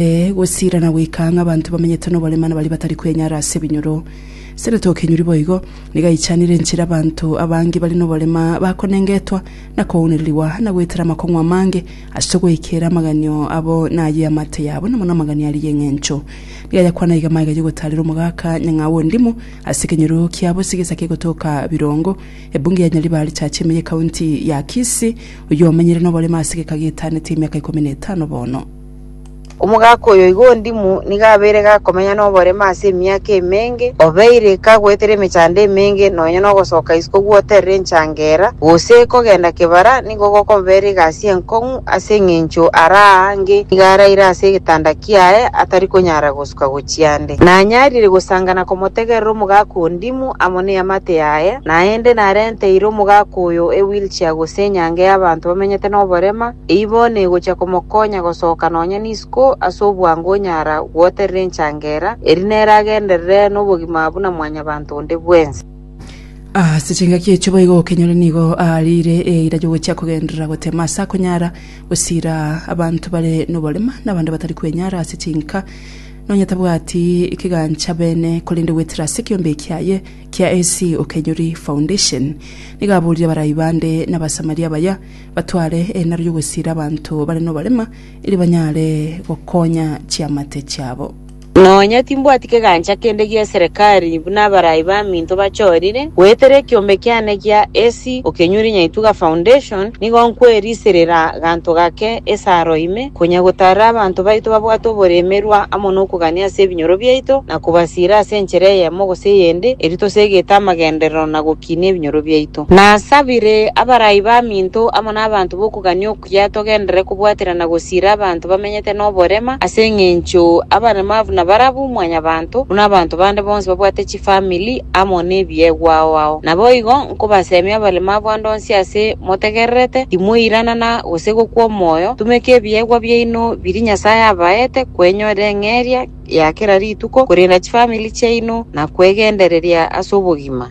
Ee, gosiira na goika ang'e abanto bamenyete noborema na baria batari kwenyara ase ebinyoro. Sere tokenyuri boigo, nigo aichanire enchera abanto abange bare noborema bakonengetwa, na kounererigwa, na goetera amakong'u amange ase ogoekeera amaganio abo na ayio y'amate yabo, na mono amaganio aria y'engencho. Nigo ayakwana iga magega ya ogotaarera omogaka nyang'au o Ndimu ase ekenyoro kia Bosi gesa kia egotoka Birongo, ebunge ya Nyariba richache ime y'ekaunti ya Kisii, oyio omenyire noborema ase egeka gietanete emiaka ikomi na etano bono. Omogaka oyo igo ondimu nigo abeire gakomenya noboremu ase emiaka emenge, obeire kagoetera emechando emenge, nonya nogosoka isiko gwoterera enchangera, gose kogenda kebara nigo gokobera egasi enkong'u, ase engencho araange nigo araire ase egetanda kiaye atari konyara gosuka gochia nde. Nanyarire gosanga na komotegerera omogaka ondimu amo neamate yaye, naende narenteire omogaka oyo ewheelchair gose enyange y'abanto bamenyete noborema, Eibo negochia komokonya gosoka nonya nisiko ase obwango onyara gwoterera enchangera, erio nere agenderere nobogima buna mwanyabanto onde bwensi. Ase chingaki echio boigo okenyore nigo aariire eira y'ogochia kogenderera goteema ase akonyara gosiira abanto bare noborema na abande batari kwenyara ase chinka nonya tabwati kegancha beene korende goetera ase ekeombe kiaye kia AC Okenyori Foundation. Nigo aboririe abarai bande na Abasamaria abaya batware erindaro ri'ogwesiira abanto bare noborema, erio banyare gokonya chiamate chiabo. Nonya timbwati kegancha kende gi'eserekari buna abarai baminto bachorire. Goetera ekiombe kiane gia AC okenyure Nyaituga Foundation, nigo nkweriserera ganto gake esaaro ime, konya gotaarera abanto baito babwate oboremerwa amo nokogania ase ebinyoro biaito na kobasiira ase enchera eyemo gose eyende, erio tosegete amagenderero na gokinia ebinyoro biaito. Nasabire abarai baminto amo nabaanto b'okogania okuya togenderere kobwaterana gosiira abanto bamenyete noborema, ase engencho abaremavu nabarabu mwanyabaanto, buna abanto bande bonsi babwate chifamili amo nebiegwao ao. Naboigo nkobasemia abaremavu ande onsi ase motegererete, timoiranana gose gokwa omoyo, tumeka ebiegwa biaino biria Nyasaye abaete kwenyora eng'eria ya kera rituko, korenda chifamili chiaino, na kwegendereria ase obogima.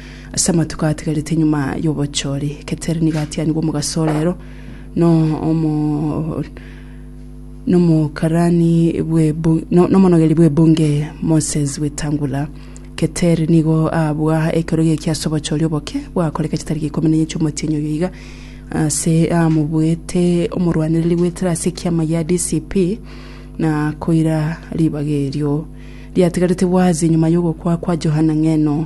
Ase amatuko atigarete nyuma y'obochori, Keter nigo atianigwe omogaso o reero no omo nomokarani bw'ebu- no- nomonogeri bw'ebunge Moses Wetangula. Keter nigo abua ekero geki ase obochori oboke bwakoreka chitariki ikomi na enye chi'omotienyi oyo iga ase amobuete omorwanereri bw'etera ase ekiama gia DCP na koira ribaga erio riatigarete bwazi nyuma y'ogokwa kwa Johana Ng'eno.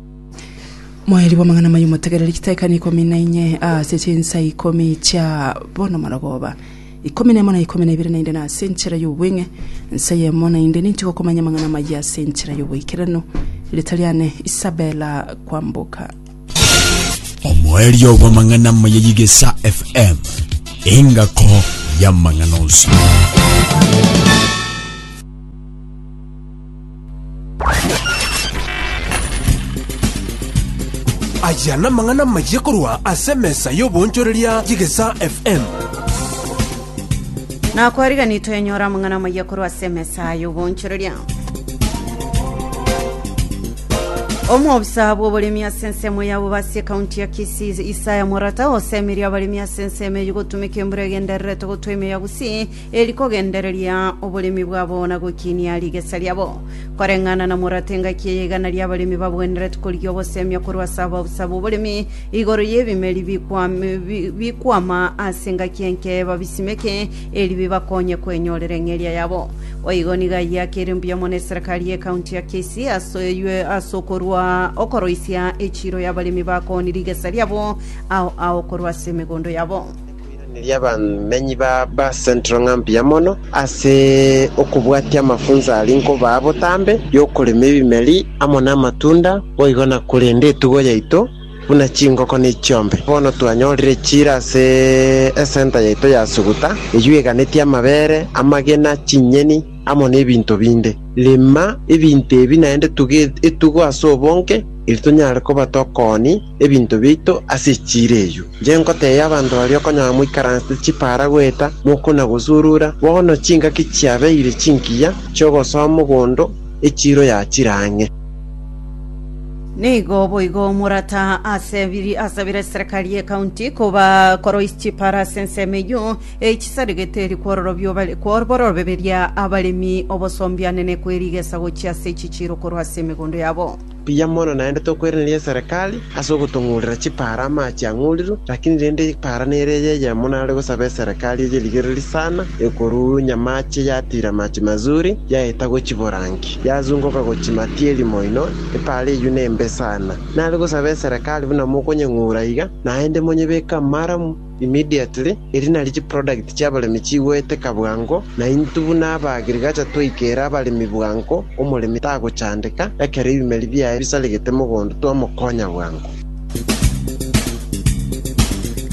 Moeri bw'amang'ana amaya omotegereri chitaikani ikomi na inye ase chinsa ikomi chia bono marogoba ikomi na emo na ikomi na ibere naende nase enchera y'obweng'e ensa eyemo naende ninche gokomanya amang'ana amaya ase enchera y'oboikeranu rieta riane Isabella Kwamboka omoerio bw'amang'ana amaya y'igesa fm engako y'amang'ana onsi Aya namang'ana amayia korwa ase emesa y'oboonchoreria y'Egesaa FM. na kwarigani twenyora amang'ana amayia korwa ase emesa y'oboonchoreria omwobisa bw'oboremi ase ensemo ya bobasi ekaunti ya kisii isaya morata osemeria abaremi ase ensemo eyio gotumeka embura egendererete gotwa emio ya gusii eri kogendereria oboremi bwabo na gokinia rigesa riabo. Koreng'ana na morato engaki eye igana ri'abaremi babwenerete korigia ogosemia korwa ase ababusa b'oboremi igoro y'ebimeri bikwam- bi- bikwama ase engaki enke babisimeke eri bibakonye kwenyorera eng'eria yabo. Boigo nigo ayio akere mbuya mono eserekari y'ekaunti ya Kisii ase oywe- ase okorwa okoroisia echiiro y'abaremi bakoni rigesa riabo ao ao korwa ase emegondo yabo. Koiraneria abamenyi ba Bar-Central ng'a mbuya mono ase okobwatia amafunso aria nkobaa botambe y'okorema ebimeri amo namatunda, boigo nakorenda etugo yaito buna chingoko ne chiombe. Bono twanyorire echiira ase esenta yaito ya Suguta, eyio eganetie amabere, amagena, chinyeni, amo nebinto binde. Rema ebinto ebi naende tuge etugo ase obonge, erio tonyare koba tokooni. ebinto biaito ase echiira eyio. Inche nkoteebia abanto baria okonyora moikaransete chipaara goeta mokuna gosurura, bono chingaki chiabeire chinkiya chi'ogosoa mogondo echiiro ya chire ang'e. Nigo boigo morata ase biri ase bire eserekari y'ecounty koba koroisia chipaara ase ensemo eyio, echisarigete eri kwororobio bare kwororoberia abaremi obosombianene kwe rigesa gochia ase echichiiro korwa ase emegondo yabo. Mbuya mono naende tokweraneri eserekari ase ogotong'urera chipaara amache ang'urirwe, lakini rende epaara nere eye eyemo nare gosaba eserekari eye rigereri sana ekoruu nyamache yatiira amache mazuri yaeta gochiborangi yazungoka gochia matieri moino epaara eyio nembe sana nare gosaba eserekari buna mokonyeng'ura iga naende monyebeke amaramu Immediately, erio nario chiproduct chiabaremi chigoeteka bwango, na intwe buna abaagriculture twaikera abaremi bwango, omoremi tagochandeka, ekero ebimeri biaye bisaregete mogondo twamokonya bwango.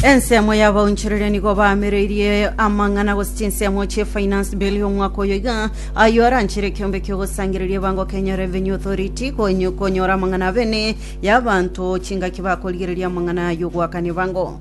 Ensemo y'abaonchoreria nigo baamereirie amang'ana gose chinsemo chie finance bill y'omwaka oyo iga, ayio aranchere ekeombe ki'ogosangereria ebango Kenya Revenue Authority konyo- konyora amang'ana abene y'abanto chingaki bakorigereria amang'ana ay'ogoakana ebango.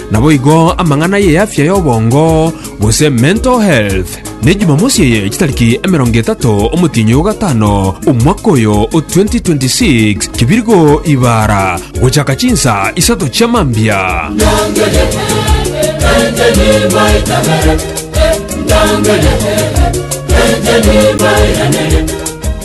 Naboigo amang'ana y'eafya y'obongo, gose mental health, ne Jumamosi eye chitariki emerongo etato omotienyi o gatano omwaka oyo o 2026 kibirgo ibara gochaka chinsa isato chia mambia.